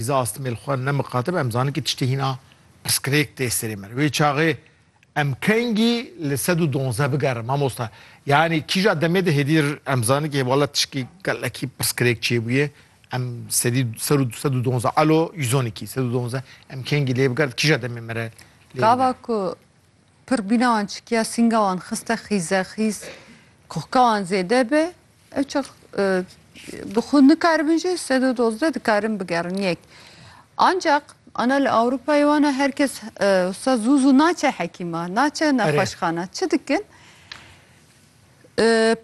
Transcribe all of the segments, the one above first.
Îza astmêl xwe ne miqatib em zanin ki tiştê hîna piskirêk tê serê me. Wê çaxê em kengî li sed û donzdeh bigerin mamosta. Yanî kîja demê de hêdî em zanin ki hê wala tişkî gelekî piskirêk çêbûye. Em sedî ser û sed û donzdeh alo yüz on îkî sed û donzdeh em kengî lê bigerin kîja demê me re lê Gava ku pir bîna wan çikiya sînga wan xiste xîze xîz kohka wan zêde be ev çax bi xwe nikaribin jî sed û dozdeh dikarin bigerin yek ancaq ana li Ewropayê wana her kes wisa zû zû naçe hekîma naçe nexweşxana çi dikin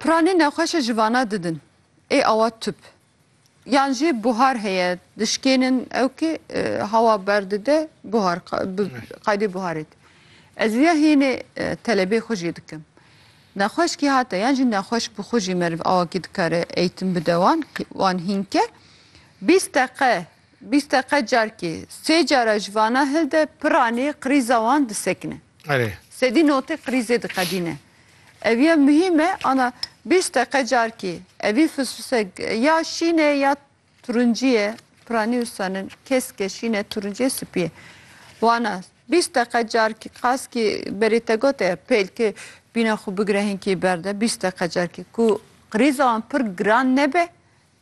piranê nexweşe ji vana didin ê awa tüp Yan jî buhar heye dişkênin ew kî hawa berdide buhar qaydê buharê dî. Ez vîya hînê telebê xwe jî dikim. Nexweş kî hate yan jî nexweş bi xwe jî meriv awa kî dikare eğitim bide wan wan hînke bîst deqe Bîst deqe carkê sê cara ji vana hil de piranê qirîza wan disekine. Erê. Sedî notê qirîzê diqedîne. Eviya muhîm e ana bîst deqe carkê evî fisfise ya şîn e ya turincî ye piranî wisanin kesk e şîn e turincî ye spî ye. Wana bîst deqe carkê qas kî berê te gote pêlke bîna xwe bigire hinkê berde bîst deqe carkê ku qirîza wan pir giran nebe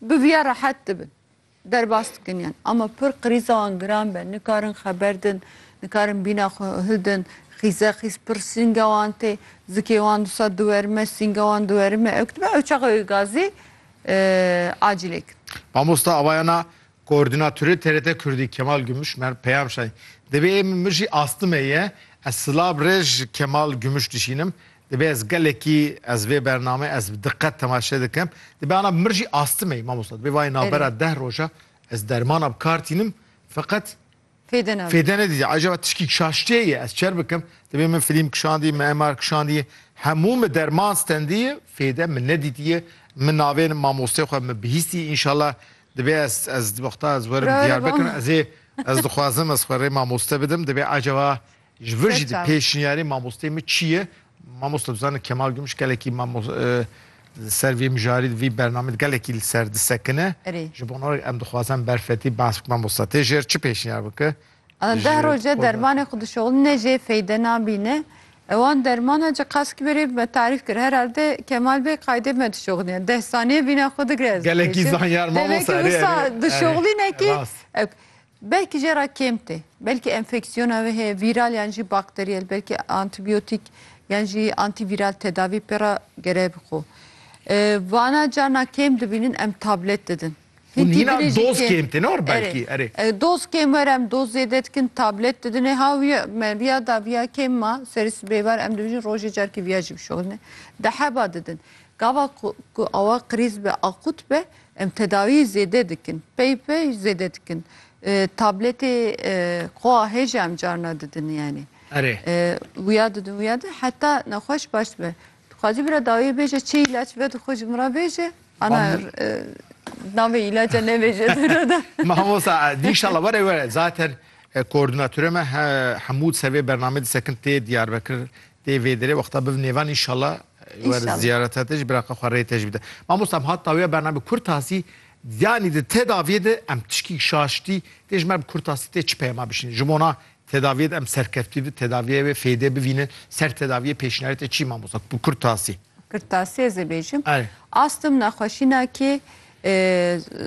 bi viya rehet dibin. Derbas dikin yan ama pir qirîza wan giran be, nikarin xeber din, nikarin bîna xwe hildin, xîze xîz pir sînga wan tê, zikê wan disa diwerime, sînga wan diwerime ew dibe ew çaxa wê gazê acîlê kin. Mamosta avayana Koordînatorê TRT Kurdî Kemal Gümüş mer peyam şay, Divê ê min mijî astime ye, ez silab rê ji Kemal Gümüş dişînim, Dibe ez gelekî ez vê bername ez bi diqet temaşe dikim. Dibe ana bi mir jî astime mamosta. Dibe vayê navbera deh roja ez dermana bi kar tînim feqet Fêde ne. Fêde ne dîdî. Acaba tişkî kişaştê ye ez çer bikim. Dibe min film kişandî, min MR kişandî. Hemû min derman stendî, fêde min nedîtiye. Min navên mamostê xwe min bihîstî inşallah dibe ez ez wexta ez werim Diyarbekir ezê ez dixwazim ez xwe rê mamoste bidim. Dibe acaba Ji vir jî di pêşniyarê mamosteyê min çi ye? Mamosta tu zanî Kemal Gümüş gelekî di ser vê mijarî di vî bernamê gelekî li ser disekine. Ji bo navê em dixwazin berfetî behs bikin mamosta. Tê jêr çi pêşniyar bike? Deh roje dermanê xwe dişoxîne jê feyde nabîne. Wan dermana ji qesk berê me tarîf kir. Herhalde Kemal Bey qayde me dişoxîne. Deh saniyê vîna xwe digre ez. Gelekî zanyar mamosta. Dişoxîne kî Belkî jê re kêm tê. Belkî enfeksiyona wê heye vîral yan jî bakteriyel. Belkî antîbiyotîk yan jî antîvîral tedavî pê re gere bixwe. Vana carna kêm dibînin em tablet didin. Hûn Hintî hîna binê jî doz kêm. kêm tê ne or belkî erê. Erê. Doz kêm were em doz zêde dikin tablet didinê. Ha wî me vîya da vîya kêm ma serê sibê var em dibêjin rojê carkî vîya jî bişoxîne. Di heba didin. Gava ku ku awa qirîz be akut be Em tedawî zêde dikin. Pey pey zêde dikin. Tabletê qoa hê jî em carna didin yanî. Erê. Wiya didin wiya didin heta nexweş baş dibe. Tu xwazî bira dawiyê bêje çi îlaç ve dixwe ji min re bêje. Ana navê îlaca nebêje tu re de. Mamosta dî inşallah were were zaten koordinatorê me Hemûd ser vê bernameyê disekin tê Diyarbekir tê vê derê wexta biv nêvan inşallah Wer ziyarete te jî biraqa xwe rê te jî bide. Mamosta em hat dawiya bername kurtasî yanî di tedaviyê de em tişkî şaştî tê ji me bi kurtasî tê çi peyama bişînin? Ji bona tedaviyê de em serkeftî di tedaviyê wê fêdê bivînin ser tedaviyê pêşniyarê te çi mamosta bi kurtasî? Kurtasî ez ê bêjim astim nexweşîna kê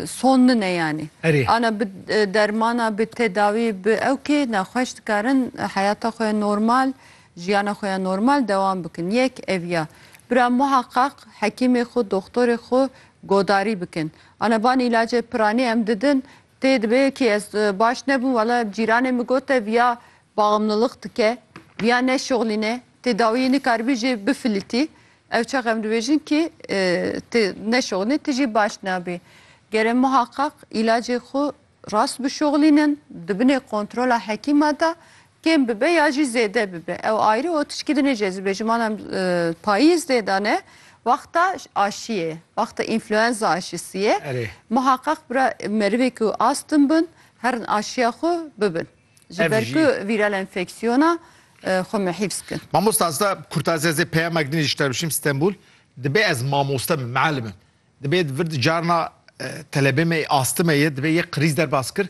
son nin e yanî ana bi dermana bi tedawî bi ew kê nexweş dikarin heyata xwe normal Jiyana xwe ya normal dewam bikin. Yek ev ya. Bira muheqeq hekîmê xwe, doxtorê xwe godarî bikin. Ana van îlacê piranî em didin tê dibe yekî ez baş nebûm wela cîranê min got te viya baxmliliq dike, viya neşuxlîne, tedawiyê nikaribî jê bifilîtî. Ew çax em dibêjin kî tu neşuxlî tu jî baş nabî. Gere muheqeq îlacê xwe Rast bişoxlînin, di binê kontrola hekîma de kêm bibe ya jî zêde bibe. Ew ayrî û tişkî di nê cezibê ji mala em payîz dê de ne wexta aşiyê, wexta înfluenza aşisiyê. Erê. Muheqeq bira merivê ku astim bin herin aşiya xwe bibin. Ji ber ku vîral enfeksiyona xwe me hîfz kin. Mamosta ez de kurtazê zê peyamek dinê ji te bişîm Stenbul. Dibe ez mamoste bim, mialim im. Dibê di vir di carna telebê me yê astime yê dibê yê qirîz derbas kir.